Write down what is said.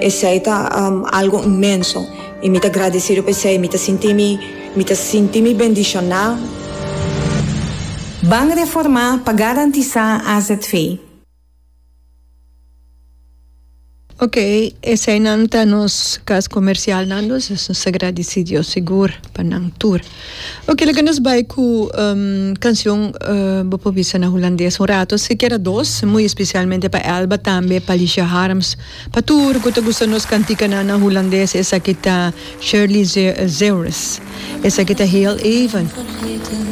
Esei ta algo inmenso i mi ta gradesido pa esei. Mi ta sinti mi, mi ta sinti mi bendishoná. Ban reformá pa garantisá azv. Ok, eseinan ta nos kas komersialnan, nos ta gradesido sigur pa nan tur. Oke laga nos bai ku kanshon bo por bisa na hulandes un rato si keda dos muy especialmente pa Elba tambe pa Lisha Harms pa tur ku ta gusta nos kantikanan na hulandes esaki ta Shirley Zeeuwris esaki ta heel even.